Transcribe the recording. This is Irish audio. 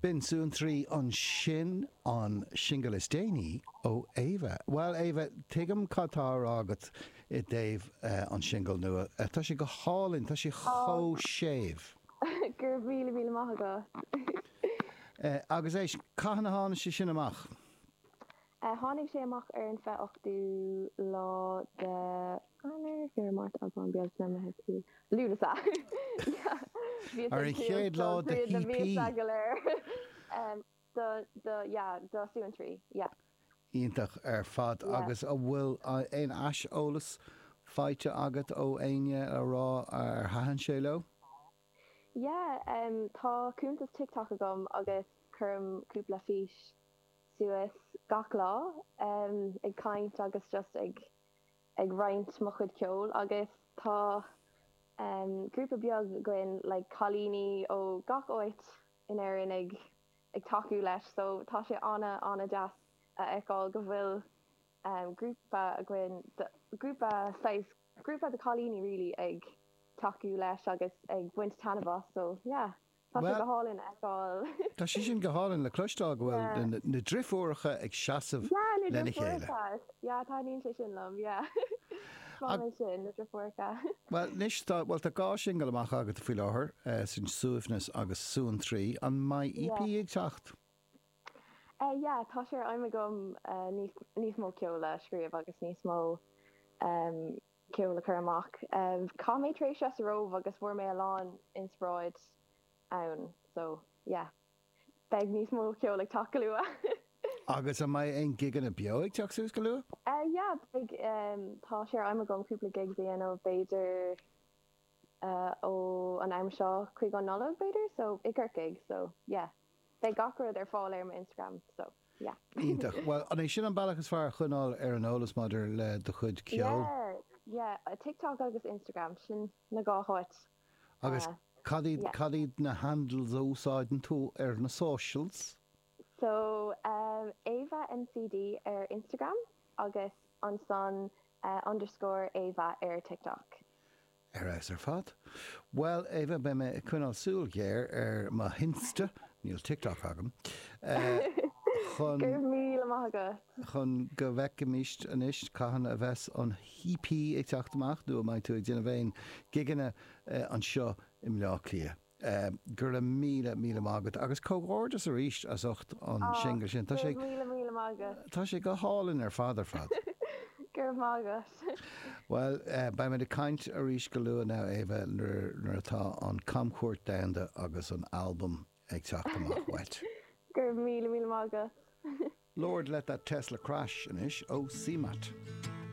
B'in suantraí ansin, an singil is déanaí ó Éabha. Bhuel, Éabha, tuigim cad tá á rá agat i dtaobh an singil nua. Tá sé go hálainn, tá sé chomh séimh. Go raibh míle míle maith agat. Agus éist, cathain a tháinig sé sin amach? a tháinig sé amach ar an 28ú lá de Eanáir, Feabhra, Márta, Aibreán, Bealtaine, Meitheamh, Iúil, Lúnasa. Sea, bhí sé Ar an chéad suas lá don de chríoch na hp. míosa go léir. Em, do, do, yeah, do suantraí, yeah. Iontach ar fad. Yeah. Agus a bhfuil aon aiseolas faighte agat ó éinne a rá ar thaitin sé leo? Yeah, em, tá cuntas TikTok agam agus cuirim cúpla fís. suas gach lá ag caint agus just ag ag roinnt mo chuid ceoil agus tá grúpa beag againn like cailíní ó gach áit in Éirinn ag ag tacú leis so tá sé ana ana-dheas a fheiceáil go bhfuil grúpa againn grúpa saghas grúpa de chailíní really ag tacú leis agus ag baint taitneamh as so yeah. Tá sé go hálainn a fheiceáil. Tá sé sin go hálainn le cloisteáil, go bhfuil na driofúracha ag seasamh lena chéile. Yeah, na driofúracha. Yeah, taitníonn sé sin liom, yeah. Is breá liom sin, na driofúracha. Bhuel, anois, tá, bhuel, tá dhá singil amach agat faoi láthair, sin Suaimhneas agus Suantraí. An mbeidh EP ag teacht? Eh, yeah, tá sé ar aidhm agam níos, níos mó ceoil a scríobh agus níos mó, eh. ceol a chur amach. Chaith mé tréimhse sa Róimh agus fuair mé a lán inspioráid ann. So, yeah. Beidh níos mó ceol ag teacht go luath. Agus an mbeidh aon gigeanna beo ag teacht suas go luath? Yeah, beidh. Tá sé ar aidhm agam cúpla gigs a dhéanamh b'fhéidir ó an am seo chuig an Nollaig b'fhéidir, so i gCorcaigh. So, yeah. Beidh gach rud ar fáil ar mo Instagram so yeah. Iontach. Bhuel, an é sin an bealach is fearr a choinneáil ar an eolas maidir le do chuid ceoil? Yeah, yeah. TikTok agus Instagram, sin na dhá háit. Agus cad iad, cad iad na handles a úsáideann tú ar na socials? So, Éabha McD ar Instagram agus ansan underscore Éabha ar TikTok. Ar fheabhas ar fad. Bhuel, Éabha, beidh mé ag coinneáil súil ghéar ar mo Insta, níl TikTok agam, chun, Go raibh míle maith agat. chun go bhfeicfimis anois cathain a bheas an EP ag teacht amach nó an mbeidh tú ag déanamh aon gigeanna anseo i mBleá Cliath. Go raibh míle, míle maith agat, agus comhghairdeas arís as ucht an singil sin. Tá sé, tá sé go hálainn ar fad ar fad. Go raibh maith agat. Bhuel, beimid ag caint arís go luath now, Éabha, nuair atá an camchuairt domhanda agus an albam ag teacht amach uait. Go raibh míle, míle maith agat. Lord, let that Tesla crash, anois, ó CMAT.